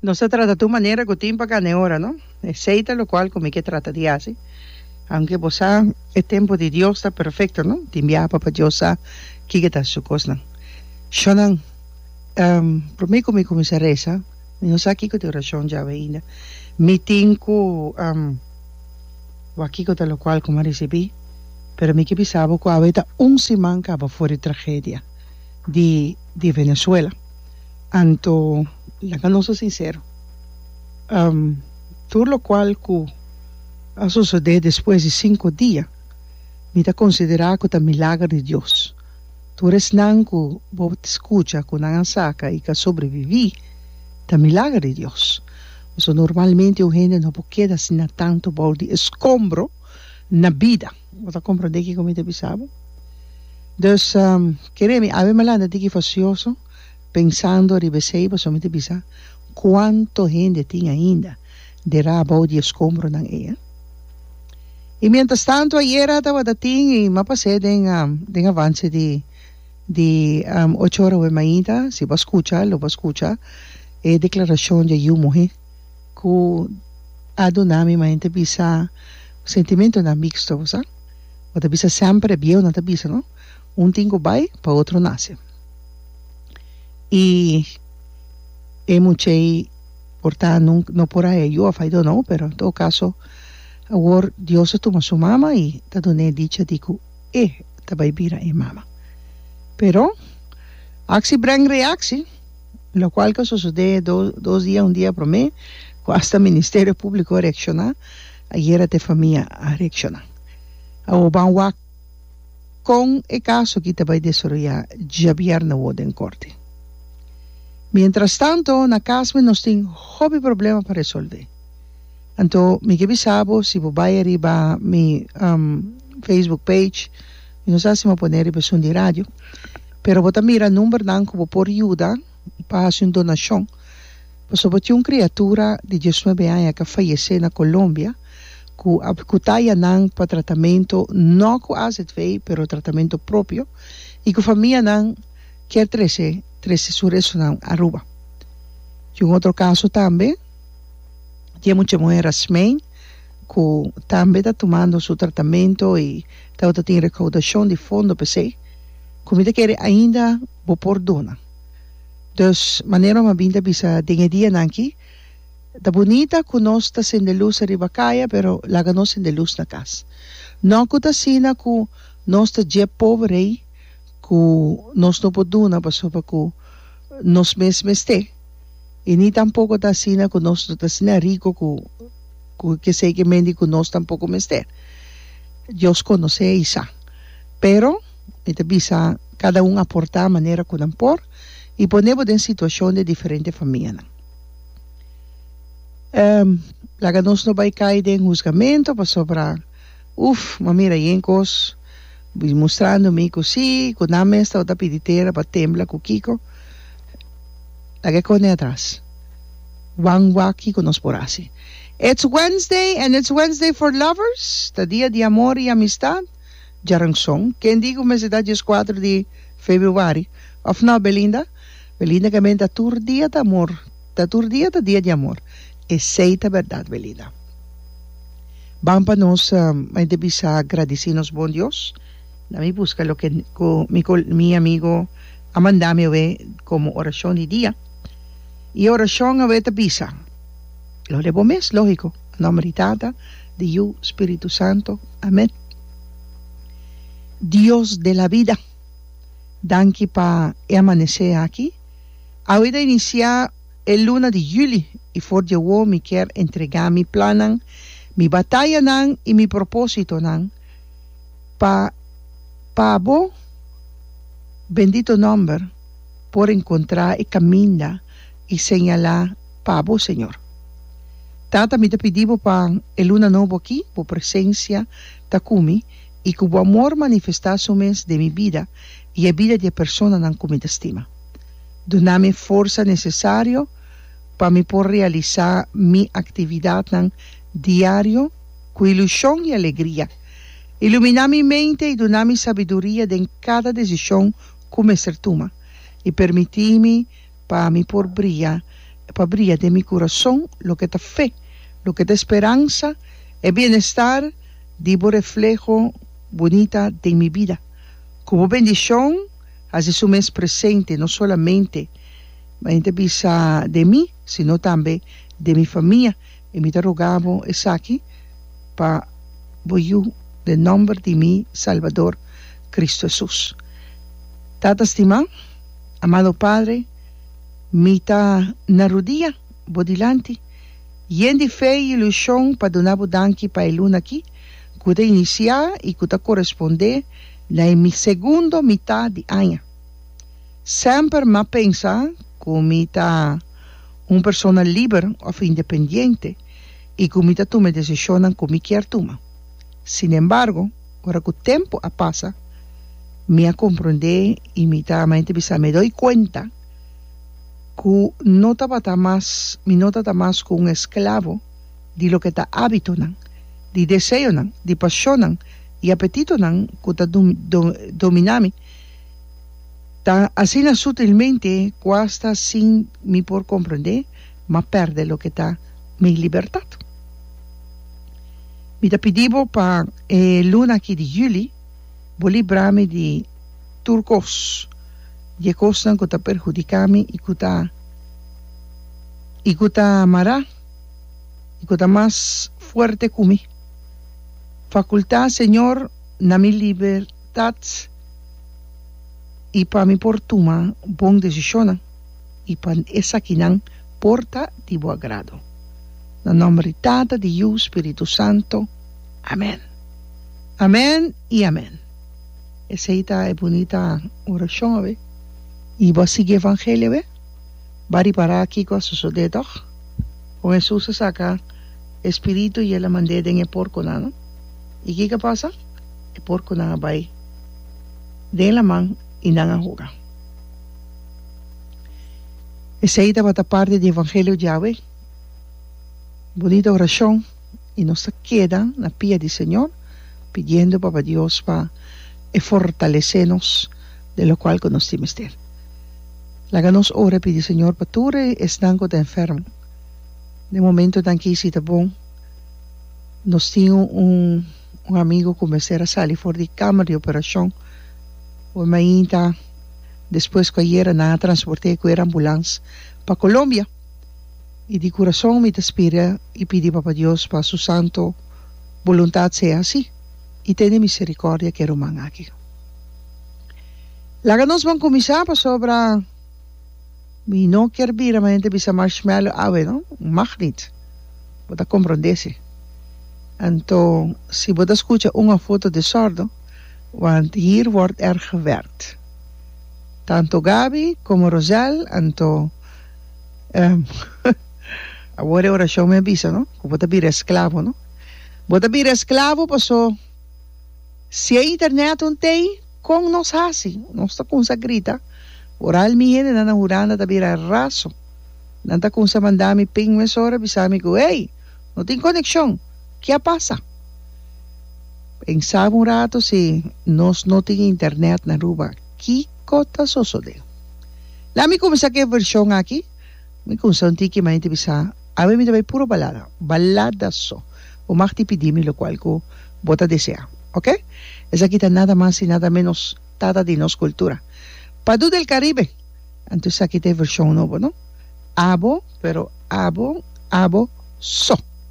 Nos ta trata tur manera ku tin pa kanda e ora, no? Esei ta lokual ku mi ke trata di hasi. Aunke bo sa e tempu di Dios ta perfekto, no? Tin biaha Papa Dios sa kiko ta Su kosnan. Shonnan, promé ku mi kuminsá resa, mi no sa kiko ta e orashon djawe ainda. Mi tin ku wak kiko ta lokual ku mi a risibí, pero mi ke bisa bo ku awe ta un siman kaba for di tragedia di Venezuela. Anto laga nos a sinsero, tur lokual ku a sosodé despues di sinku dia mi ta konsiderá ku ta milager di Dios. Tur esnan ku bo ta skucha ku nan a saka i ka sobreviví ta milager di Dios. Pasobra normalmente un hende no por keda asina tantu bou di eskombro na bida. Bo ta comprende kiko mi ta bisa bo? Dus, kere mi awe mi lanta tiki fasioso pensando riba esei, pasobra mi ta bisa, Kuantu hende tin ainda derá abou di e skompronan ei? I miéntras tantu ayera tabata tin i m'a pas'é den den avanse di di ocho ora awe mainta, si bo a skucha lo bo a skucha e deklarashon di yu muhé. ku a duna mi maña ta bisa sentimentonan mixto bo sa bo ta bisa semper e biehunan ta bisa no un tin ku bai pa otro nase i e mucha ei por ta nunka no por a e yu of i dont know pero en todo kaso awor Dios a tuma su mama i ta duna e dicha di ku e ta bai bira e mama pero aksi breng reaksi. Lokual ku a sosodé dos dia un dia promé ku asta Ministerio Públiko a reakshoná ayera até famia a reakshoná awor ban wak kon e kaso aki ta bai desaroyá djabièrnè awor den korte mientrastanto na kas mi nos tin hopi problema pa resolve anto mi ke bisa bo si bo bai ariba mi Facebook page mi no sa si mi a pone ariba esun di radio. Pero bo ta mira numbernan ku bo por yuda pa hasi un donashon. Pasobra bo tin un kriatura di dies nuebe aña ku a fayesé na Colombia ku a kutaya nan pa tratamentu no ku azv pero tratamentu propio i ku famianan kier trese trese su restunan Aruba. Tin un otro kaso tambe di e mucha muhé Rasmijn ku tambe ta tumando su tratamentu i tabata tin rekaudashon di fondo p'esei. cu mi ta kere ainda bo por duna. Dus manera bo a bin ta bisa den e dianan aki, Ta bunita cu nos ta sende luz ariba caya, pero laga nos sende luz na cas. No cu ta asina cu nos ta dje poberei cu nos no por duna pasobra cu nos mes mester, y ni tampoco ta asina cu nos no ta asina rico cu cu kesey ke mendi cu nos tampoco mester. Dios conoce y sa. Pero, mi ta bisa, kada un aportá manera ku nan por i pone bo den situashon di diferente famianan. Ehm, laga nos no bai kai den husgamentu pasobra, uf, m'a mira e ein kos, bi mustrando mi ku si, ku nan mes tabata ta pidi tera pa tembla ku kiko. Laga e kos den atras. Wan wak kiko nos por hasi. It's Wednesday and it's Wednesday for lovers, ta dia di amor i amistat. Djaranson, Ken di ku mester ta dies kuater di Febrüari òf nò, Belinda? Belinda, Kemben ta tur dia ta amor, ta tur dia ta dia di amor. Esei ta bèrdat, Belinda. Ban pa nos mai ta bisa gradisí nos bon Dios. Na mi buska loke ku mi ko mi amigu a manda mi awe komo orashon di dia. I e orashon awe ta bisa, Lo de bo mes, lógiko. Nomber di Tata, di Yu, Spiritu Santo. Amen. Dios de la vida, danki pa e amanesé aki. Awe ta inisiá e luna di juli i for di awor mi kier entregá mi plannan, mi batayanan i mi propósitonan pa pa Bo bendito nòmber por enkontrá e kaminda i señalá. pa bo, Señor. Tata, mi ta pidi bo pa e luna nobo aki bo presencia ta cu mi y cu bo amor manifesta su mes den mi bida y e bida di e personanan cu mi ta stima. Duna mi e forsa necesario pa mi por realisa mi actividadnan diario cu ilusion y alegria. Ilumina mi mente y duna mi sabiduria den cada decision cu mester tuma y permiti mi Pa mi por bria, e pa bria den mi kurason, loke ta fe, loke ta esperansa, e bienestar di bo refleho bunita den mi bida, ku bo bendishon hasi su mes presente no solamente, mi ta bisa, den mi, sino tambe den mi famia, i mi ta roga bo esaki pa bo yu den nòmber di mi Salbador Kristu Hesus. Tata stimá. Amado Padre, mi ta na rudia Bo dilanti, yen di fe i ilushon pa duna Bo danki pa e luna aki ku ta inisiá i ku ta korespondé na e mi segundo mitá di aña. Semper m'a pensa ku mi ta un persona liber òf independiente i ku mi ta tuma e desishonnan ku mi kier tuma. Sinembargo. Ora ku tempu a pasa, mi a komprondé i mi ta mei ta bisa mi doi kuenta ku no tabata mas mi no ta ta mas ku un esklavo di loke ta ábitonan, di deseonan, di pashonnan i apetitonan ku ta dum do dominá mi tan asina sutilmente ku asta sin mi por komprondé. ma perde loke ta mi libertat. Mi ta pidi bo pa e luna aki di juli bo libra mi di tur kos, di e kosnan ku ta perhudiká mi i ku ta i ku ta mará i ku ta mas fuerte ku mi. Fakultá, Señor, na mi libertat i pa mi por tuma bon desishonnan. y pa esakinan por ta di bo agrado. Na nomber di Tata, di Yu, Spiritu Santo. Amen. Amen y amen. Esey ta e bunita oracion awe. Y bo a sigui evangelio awe. Ba ripara kico a sosode toch? Con Hesus a saca e spiritu y el a mande den e porconan, no? Y kico a pasa? E porconan a bay den laman y nan a hoga. Esei tabata parti di evangelio djawe, bunita orashon i nos ta keda na pia di Señor pidiendo Papa Dios pa e fortalece nos den lokual ku nos tin mester. Laga nos ora pidi Señor pa tur esnan ku ta enfermo den momentonan aki si ta bon nos tin un amigo ku mester a sali for di kamer di operashon, por mainta. Despues ku a yera nan a transport'é ku er ambulans pa Colombia. I di kurason mi ta spira i pidi Papa Dios pa su santo boluntat sea hasi i tene miserikordia ku e ruman aki. Laga nos ban kuminsá pasobra mi no kier bira manera ta bisa Marshmello awe no, mag nit. Bo ta komprondé si. Anto si bo ta skucha un of otro desordo. want hier word er gewerkt. Tanto Gaby como Rosel anto ehm awor e oracion mi a bisa no cu bo ta bira esclavo no bo ta bira esclavo paso si e internet un t'ey con nos haci nos ta cunsa grita ora al mi hendenan a hura nan ta bira raso nan ta cunsa manda mi ping mesora bisami cu ey No tin konekshon. Ke a pasa? Pensá un ratu si nos no tin internèt na Aruba, kiko ta sosodé? La'a mi kuminsá ku e vershon aki. Mi kuminsá un tiki manera di bisa, Ami mi ta bai puro balada, balada so. Bo mag tin pidí mi lokual ku bo ta deseá. Oke? Esaki ta nada mas i nada ménos Tata di nos kultura. Padu del Karibe! Anto aki ta e vershon nobo no. Abo, pero abo, abo so.